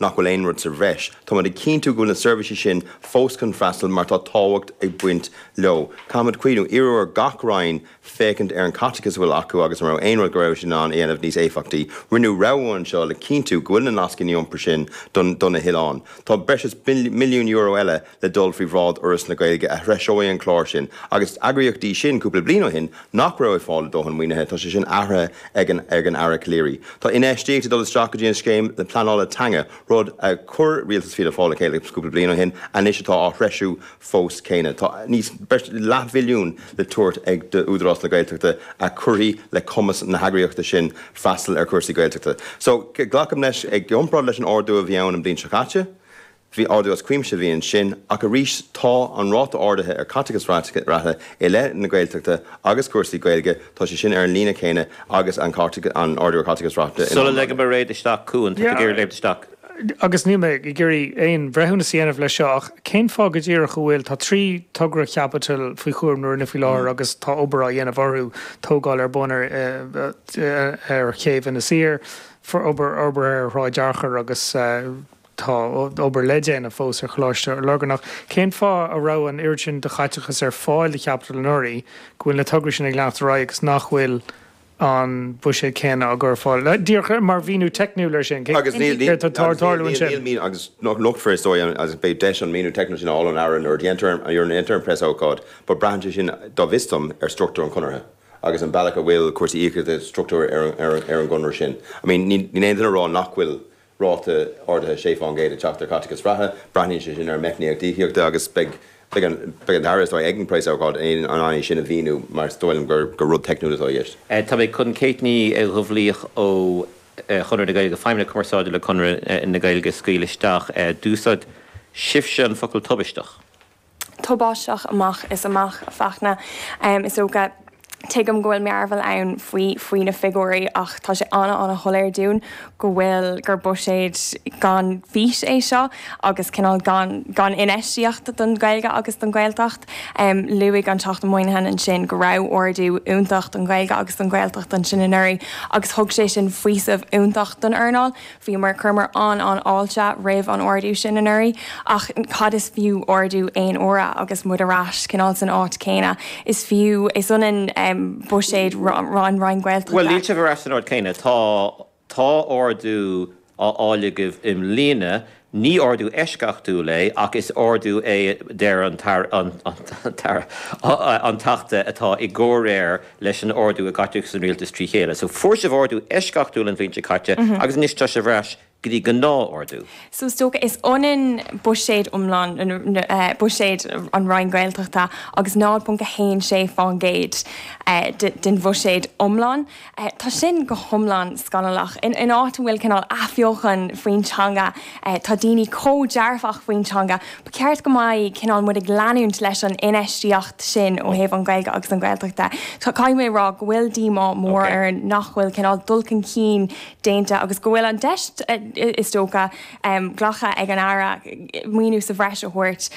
nach bhfuil aon rud sa bhreis. Táimid ag cinntiú go bhfuil na seirbhísí sin fós chun freastal mar tá tábhacht ag baint leo. Caithfimid cuimhniú, iarradh ar gach Roinn féachaint ar an gcaiteachas a bhfuil acu agus an raibh aon rud go raibh siad in ann a dhéanamh níos éifeachtaí. Rinneadh rogha anseo le cinntiú go bhfuil na nascanna iompair sin do na hoileáin. Tá breis is milliún euro eile le dul faoi bhráid Fhoras na Gaeilge a threiseoidh an clár sin, agus na heagraíochtaí sin, cúpla bliain ó shin, nach raibh ag fáil a dóthain maoinithe. Tá sé sin athraithe ag an Aire Calleary. Tá infheistíocht ag dul isteach go dtí an scéim pleanála teanga, rud a chuir rialtas Fianna Fáil le chéile cúpla bliain ó shin, anois atá á threisiú fosta céanna. Tá breis is leathmhilliún le tabhairt d'Údarás na Gaeltachta a chuirfidh le cumas na heagraíochta sin freastal ar chúrsaí Gaeltachta. So, glacaim leis, i gcomparáid leis an ardú a bhí ann an bhliain seo caite, Bhí ardú as cuimse a bhí ansin, ach arís tá an ráta ardaithe ar chaiteachas reatha i leith na Gaeltachta agus cúrsaí Gaeilge, tá sé sin ar an líne chéanna agus an ardú ar chaiteachas reatha in. Sula ligim Kate isteach chugainn, tá tú ag iarraidh léimt isteach. Agus níl mé ag iarraidh aon bhreithiúnas a dhéanamh leis seo, ach cén fáth go díreach a bhfuil, tá trí togra chaipitil faoi chúram na Roinne faoi láthair agus tá obair á dhéanamh orthu, tógáil ar bun ar chéibh Inis Oírr, obair fhorbartha ar Shráid Fhearchair agus, Tá obair le déanamh fós ar Choláiste Lurgan ach. Cén fáth a raibh an oiread sin de chaiteachas ar fáil do chaipitil anuraidh, go bhfuil na tograí sin ag leanacht ar aghaidh agus nach bhfuil an buiséad céanna á chur ar fáil? Díreach mar mhíniú teicniúil air sin, céard atá ag tarlú ansin? Agus nochtfar, is dóigh, agus beidh deis an míniú teicniúil sin a fháil ón Aire nuair a dhéantar an preasócáid. But braitheann sé sin, go bhfios dom, ar struchtúr an chonartha agus an bealach a bhfuil cúrsaí íocaíochta socraithe ar an gconradh sin. I mean, níl aon duine ag rá nach bhfuil ráta ardaithe 6 faoin gcéad ag teacht ar chaiteachas reatha. Braitheann sé sin ar an meicníocht íocaíochta agus beidh an tAire, is dóigh, ag an bpréasócáid in ann é sin a mhíniú mar is dóigh liom gur rud teicniúil atá i gceist. Tá mé chun Kate Ní Dhúbhlaoich ó Chonradh na Gaeilge, Feidhmeannach Cumarsáide le Conradh na Gaeilge a scaoileadh isteach. D'úsáid sibhse an focal tubaisteach. tubaisteach amach is amach, a Fachtna. Is dócha, tuigim go bhfuil mearbhall ann faoi faoi na figiúirí ach tá sé ana-ana-shoiléir dúinn go bhfuil, gur buiséad gan fís é seo agus cineál gan infheistíocht don Ghaeilge agus don Ghaeltacht. Luaigh an Teachta Moynihan ansin go raibh ardú iontach don Ghaeilge agus don Ghaeltacht ansin anuraidh agus thug sé sin faoiseamh iontach don earnáil. Bhíomar, chuireamar an-an-fháilte roimh an ardú sin anuraidh ach cad is fiú ardú aon uaire agus muid ar ais cineál san áit chéanna. Is fiú, is ionann buiséad Roinn na Gaeltachta. Bhuel, níl sibh ar ais san áit chéanna. Tá, tá ardú á fháil agaibh i mbliana, ní ardú eisceachtúil é ach is ardú é a deir an tAire, an tAire, an Teachta atá i gcomhréir leis an ardú i gcaiteachas an rialtas trí chéile. So fuair sibh ardú eisceachtúil an bhliain seo caite agus anois tá sibh ar ais go dtí gnáth-ardú. So is dócha, is ionann buiséad iomlán buiséad an Roinn Gaeltachta agus 0.16% den bhuiséad iomlán. Tá sin go hiomlán scannalach. In áit a bhfuil cineál athbheochan faoin teanga, tá daoine chomh dearfach faoin teanga, ba cheart go mbeadh cineál muid ag leanúint leis an infheistíocht sin ó thaobh an Ghaeilge agus an Ghaeltacht de. Caithfidh mé a rá go bhfuil díomá mór orainn nach bhfuil cineál dul chun cinn déanta agus go bhfuil an deis is dócha glactha ag an Aire maoiniú sa bhreis a thabhairt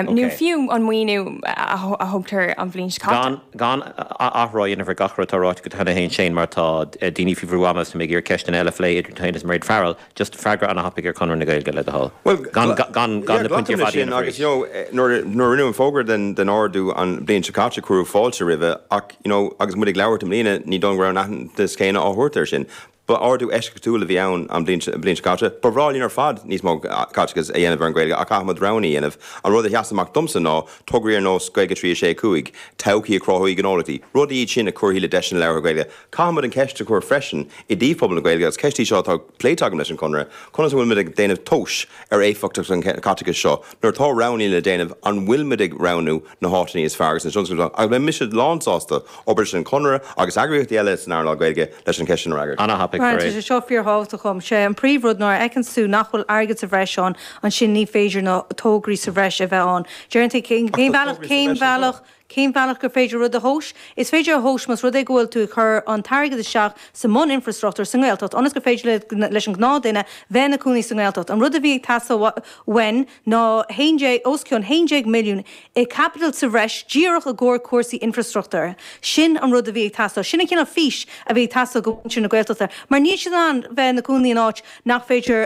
nó Ok. fiú an maoiniú a thugtar an bhliain seo caite. Gan gan athrá a dhéanamh ar gach rud atá ráite go dtí tú fhéin Shane mar tá daoine faoi bhrú ama agus tá mé ag iarraidh ceisteanna eile a phlé idir tú fhéin agus Mairéad Farrell. just freagra ana thapaidh ar Chonradh na Gaeilge, le do thoil, gan na pointí ar fad a dhéanamh arís. Yeah, glacaim leis sin, agus nuair a rinneadh an fógra den ardú an bhliain seo caite, cuireadh fáilte roimhe ach, you know, agus muid ag labhairt i mbliana, ní dóigh liom go raibh an aitheantas céanna á thabhairt air sin. Ba ardú eisceachtúil a bhí ann an bhliain seo caite. Ba bhreá linn ar fad níos mó caiteachais a dhéanamh ar an Ghaeilge ach caithfimid roghanna a dhéanamh. An rud a sheas amach domsa ná tograí ar nós Gaeilge 365, todhchaí a chruthóidh gnólachtaí, rudaí iad sin a chuirfidh le deiseanna labhartha Gaeilge, Caithfimid an cheist a chur freisin i dtaobh phobal na Gaeilge, agus ceist í seo atá pléite agam leis an Chonradh, conas a bhfuilimid ag déanamh tomhas ar éifeachtacht an chaiteachais seo nuair atá roghannaí le déanamh, an bhfuilimid ag roghnú na háiteannaí is fearr agus na tionscadail is fearr, agus beidh mise lánsásta obair leis an Chonradh agus eagraíochtaí eile san earnáil Gaeilge leis an cheist sin a fhreagairt. Ana-thapaidh, Mar tá sé seo fíor-thábhachtach dhom. Sé an príomh rud nuair a fheiceanns tú nach bhfuil airgead sa bhreis ann, ansin ní féidir na tograí sa bhreis a bheith ann. Deireann tú cén bhealach, cén bhealach, Cén bealach gur féidir rud a thomhas? Is féidir a thomhas más rud é go bhfuil tú ag cur an t-airgead isteach sa mbun-infreastruchtúr sa nGaeltacht ionas gur féidir leis an ghnáthduine bheith ina cónaí sa nGaeltacht. An rud a bhí ag teastáil uainn ná 11, os cionn 11 milliún i caipiteal sa bhreis díreach i gcomhair cúrsaí infreastruchtúir. Sin an rud a bhí ag teastáil. Sin an cineál fís a bhí ag teastáil do mhuintir na Gaeltachta mar níl siad in ann bheith ina gcónaí in áit nach féidir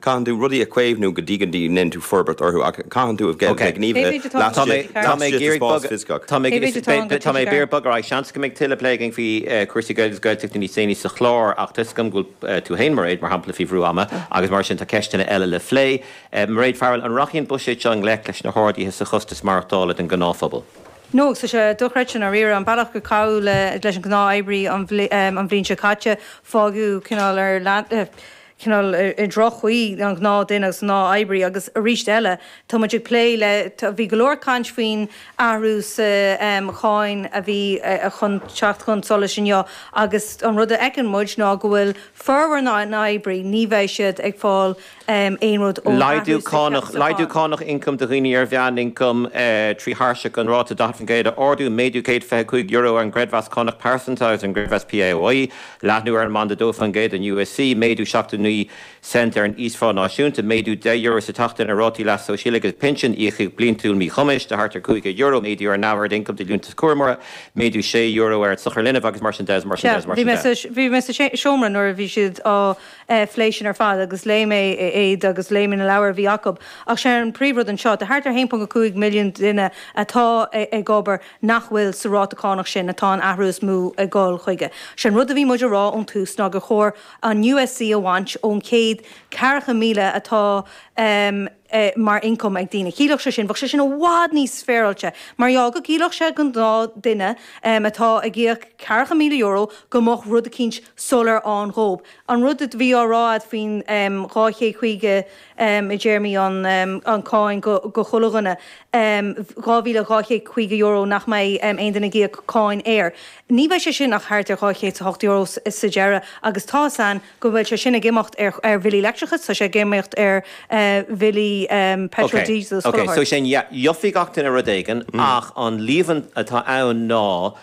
Caitheann tú rudaí a chaomhnú go dtí go ndéanann tú forbairt orthu, ach caitheann tú a bheith gníomhaithe laistigh den spás fisicach. Tá mé ag iarraidh bogadh ar aghaidh. Seans go mbeidh tuilleadh plé againn faoi chúrsaí Gaeilge agus Gaeltachta níos déanaí sa chlár, ach tá 'fhios agam go bhfuil tú féin, Mairéad, mar shampla, faoi bhrú ama agus mar sin tá ceisteanna eile le phlé. Mairéad Farrell, an rachaidh an buiséad seo i ngleic leis na harduithe sa chostas maireachtála don ghnáthphobal? No, tá sé dochreidte sin dáiríre. An bealach gur caitheadh leis an ghnáth-oibrí an bhliain seo caite, fágadh cineál ar leataobh. chineál i ndroch-chaoi, an gnáthdhuine agus an gnáth-oibrí agus arís eile tá muid ag plé le, bhí go leor ag caint faoin athrú sa cháin a bhí chun teacht chun solais inniu agus an rud a fheiceann muid ná go bhfuil formhór na n-oibrithe, ní bheidh siad ag fáil aon rud ón athrú sa cháin. Laghdú cánach ioncaim do dhaoine ar mheánioncam trí thairseach an ráta 40% a ardú, méadú €125 ar an gcreidmheas cánach pearsanta agus ar an gcreidmheas PAYE, Leathnú ar an mbanda 2 faoin gcéad den USC, méadú 79 cent ar an íosphá náisiúnta, méadú €10 sa tseachtain ar rátaí leasa shóisialaigh agus pinsin, íocaíocht bliantúil míchumais de thart ar €500, méadú ar an neamhaird ioncaim do Liúntas Cúramóra, méadú €6 ar an sochar linbh, agus mar sin de, agus mar sin de, agus mar sin de. Bhí mé sa seomra nuair a bhí siad á phlé sin ar fad agus léigh mé iad agus léigh mé na leabhair a bhí acu. Ach sé an príomhrud anseo, tá thart ar 1.5 milliún duine atá ag obair, nach bhfuil sa ráta cánach sin atá an t-athrú is mó ag dul chuige. Sé an rud a bhí muid a rá ón tús ná gur chóir an USC a bhaint ón chéad ceathracha míle atá mar ioncam ag daoine. Chiallódh sé sin, bheadh sé sin i bhfad níos féaráilte mar gheall go gciallódh sé go gnáthdhuine atá ag íoc ceathracha míle euro go mbeadh rud eicínt soiléir ann dhób. An rud a bhí á rá agat faoin dhá chéad caoga i dtéarmaí an cháin do chuile dhuine, €2,250 nach mbeidh aon duine ag íoc cáin air, ní bheidh sé sin ach thart ar €208 sa deireadh agus tá a fhios againn go bhfuil sé sin ag imeacht ar bhillí leictreachais, tá sé ag imeacht ar bhillí peitril, díosail, is fothair. So sin, yeah, gheofaidh gach duine rud éigin ach an líomhaint atá ann ná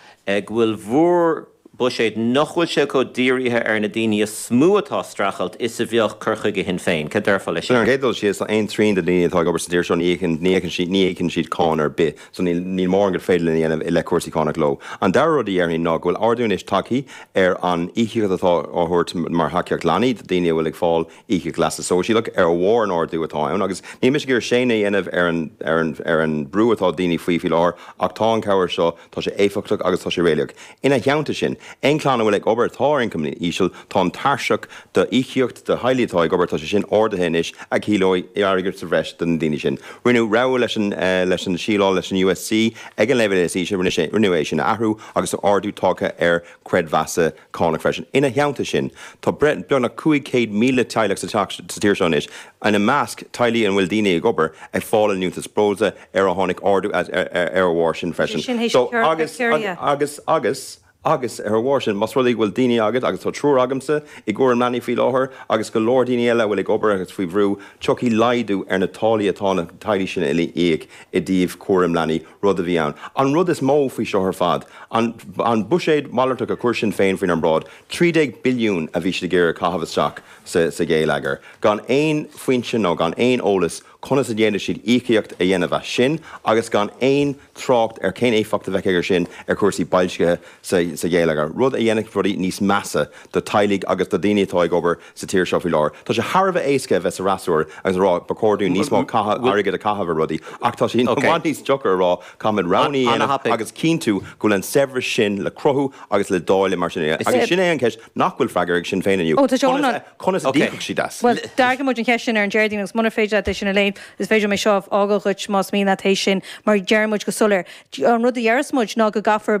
go bhfuil bhur. buiséad nach bhfuil sé chomh dírithe ar na daoine is mó atá ag streachailt is a bheadh cur chuige Shinn Féin. Cad déarfá leis sin? Ar an gcéad dul síos, tá aon trian de na daoine atá ag obair sa tír seo, ní íocann siad cáin ar bith, so níl mórán gur féidir linn a dhéanamh i leith cúrsaí cánach leo. An dara rud a dhéarfainn ná go bhfuil ardú anois tagtha ar an íocaíocht atá á thabhairt mar thacaíocht leanaí do dhaoine a bhfuil ag fáil íocaíocht leasa sóisialach, ar bharr an ardú atá ann agus níl mise ag iarraidh séanadh a dhéanamh ar an mbrú atá daoine faoi faoi láthair ach tá an chabhair seo Tá sé éifeachtach agus tá sé réalaíoch. Ina theannta sin, aon chlann a bhfuil ag obair atá ar ioncam íseal, tá an tairseach d'íocaíocht do theaghlaigh atá ag obair, tá sé sin ardaithe anois, a chiallóidh airgead sa bhreis do na daoine sin. Rinneadh rogha leis an leis an síleáil leis an USC ag an leibhéal is ísle, rinneadh sé rinneadh é sin a athrú agus tá ardú tagtha ar chreidmheasa, cánach freisin, ina theannta sin, tá breis beagnach 500,000 teaghlach sa teach sa tír seo anois, ina measc, teaghlaigh a bhfuil daoine ag obair ag fáil an liúntas breosla, ar ar tháinig ardú ar a bharr sin freisin. Sin thíos agus, agus, agus, agus, ar a bharr sin, más rud é go bhfuil daoine agat, agus tá triúr agamsa i gcúram leanaí faoi láthair, agus go leor daoine eile a bhfuil ag obair agus faoi bhrú, tiocfaidh laghdú ar na táillí atá na teaghlaigh sin uile ag íoc i dtaobh cúram leanaí, rud a bhí ann an rud is mó faoi seo ar fad, an buiséad malartach a chuir Sinn Féin faoinár mbráid, trí déag billiún a bhí siad ag iarraidh a chaitheamh isteach sa gheilleagar, gan aon foinse nó gan aon eolas conas a d'fhéadfadh siad íocaíocht a dhéanamh as sin agus gan aon trácht ar cén éifeacht a bheadh aige sin ar chúrsaí boilscithe sa gheilleagar, rud a dhéanfadh rudaí níos measa do theaghlaigh agus do dhaoine atá ag obair sa tír seo faoi láthair. Tá sé thar a bheith éasca a bheith sa fhreasúra agus a rá ba chóir dúinn níos mó airgid a chaitheamh ar rudaí ach tá sé i bhfad níos deacra a rá caithfimid roghanna a dhéanamh agus cinntiú go bhfuil an saibhreas sin le cruthú agus le dáileadh mar sin. Agus sin é an cheist nach bhfuil freagartha ag Sinn Féin inniu, conas a d'íocfadh siad as? Bhuel, d'fhreagair muid an cheist sin ar an Déardaoin agus munar féidir leat é sin a léamh, is féidir liom é seo a fhágáil dhuit más mian leat é sin mar deir muid go soiléir, an rud a dhéarfas muid ná go gcaithfear